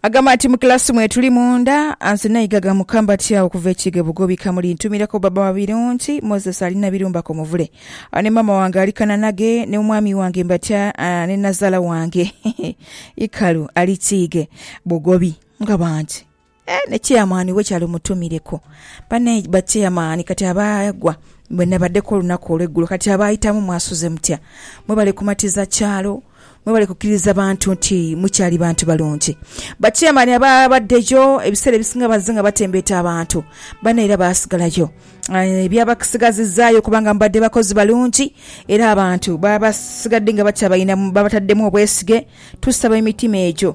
Agamba nti, Mu kilasi mwetuli munda, nze naiga ga Mukambati agho okuva ekiige bugobi. Kamuli ntumireku baba wa Birungi, Moses ali Nabirumba ku muvule. Agho ni maama wange ali Kananage, ni mwami wange Mbatya ni nazaala wange Ikalu ali Kiige bugobi nga bangi. Eeh ne chairman we kyalo mutumireku banaye ba chairman kati abagwa mwe nabadeko olunaku olwegulo kati abayitamu mwasuze mutya mwebale kumatiza kyalo mwebale kukiriza bantu nti mukyali bantu balungi ba chairman ababadeyo ebisera ebisinga baze nga batembeta abantu banaye era basigalayo eeh byabakisigazizayo kubanga mubade bakozi balungi era abantu babasigadde nga bakyabalina babatademu obwesige tusaba emitima egyo.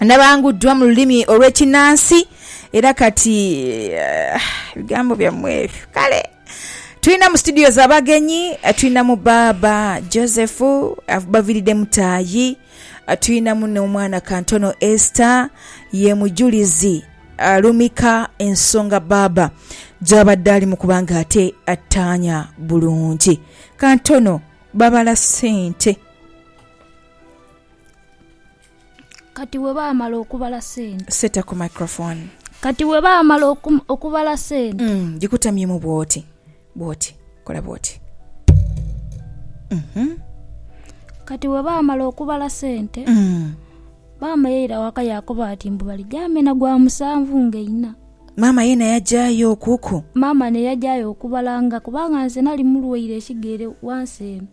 nabanguddwa mu lulimi olw'ekinnansi era kati ebigambo byammwe ebyo kale tulina mu situdiyo z'abagenyi tulinamu baaba joseph baviiridde mutaayi tulinamu n'omwana kantono esther ye mujulizi alumika ensonga baaba gy'abadde ali mu kuba nga ate attaanya bulungi kantono babala ssente. Kati bwe baamala okubala sente. Seta ku microphone. Kati bwe baamala okubala sente. Gikutemyemu bw'oti, bw'oti, kola bw'oti. Kati bwe baamala okubala sente, maama yaira waka yaakoba ati mbu bali gya mena gwa musanvu nga ina. Maama yeena yajaayo okuku. Maama naye yajaayo okubalanga kubanga nze nali mulwaire ekigere ghansi eno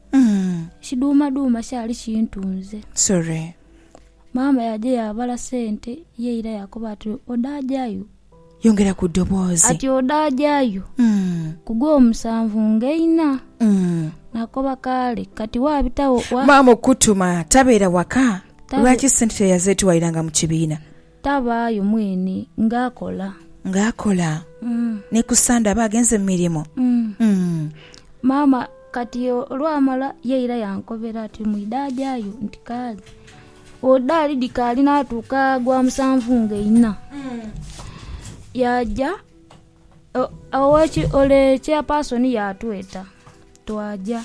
ekiduumaduuma kyali kintunze. Sorry. Maama yaja yaabala sente ye ira yakoba ati, Odaajayo? Yongera ku ddoboozi. Ati, Odaajayo ku Gwomusanvu nga eina? Nakoba, Kale, kati waabitawo wa? Maama okukutuma tabeera waka, lwaki sente teyazitwaliranga mu kibiina? Tabaayo mwene ng'akola. Ng'akola. Ni ku Sande aba agenze mu mirimo. Maama kati olwamala yaira yankobera ati, Mwidhe ajayo nti k'aze. Odaali dhikaali naatuuka gwa musanvu nga inha, yaaja Agho ole chairperson yaatweta twaja.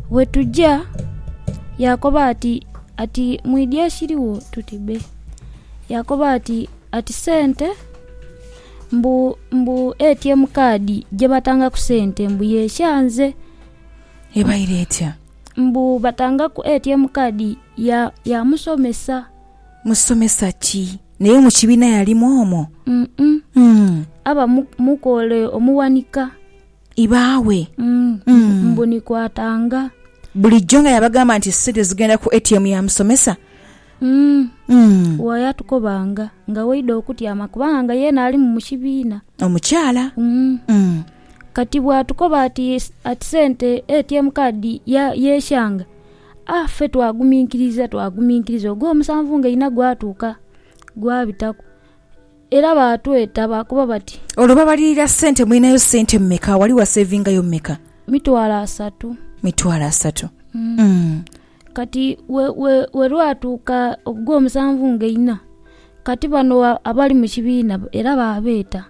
Bwetuja yaakoba ati, ati mwidhi ekirigho? Tuti be. Yaakoba ati, ati sente mbu, mbu ATM card gye batangaku sente mbu yekyanze. Ebaire etya? Mbu batangaku ATM card ya, ya musomesa. Musomesa ki? Naye mu kibiina yalimu omwo? Um. Aba mu, mu koole omuwanika. Ibaawe? Um. Mbu ni kwatanga. Bulijjo nga yabagamba nti sente zigenda ku ATM ya musomesa? Um. Um. Wa yatukobanga nga waidha okutyama kubanga nga yeena alimu mu kibiina. Omukyala? Um. Um. Kati bwatukoba ati, ati sente ATM kaadi ya, y'ekyanga, A Ffe twaguminkiriza, twaguminkiriza, ogw'omusanvu nga eina gwatuuka, gwabitaku. Era baatweta, baakoba bati. Olwo babalirira sente, mulinayo sente mmeka? Wali waseevingayo mmeka? Mitwalo asatu. Mitwalo asatu. Mm. Kati we, we, we lwatuuka ogw'omusanvu nga eina, kati bano wa- abali mu kibiina ba- era baabeeta,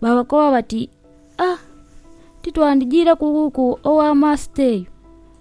baabakoba bati, A, titwandijiireku ku ow'amaasita eyo?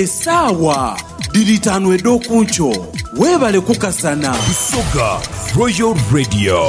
Esaawa dhiri itaanu edh'okunkyo. Weebale kukasana. Busoga Royal Radio.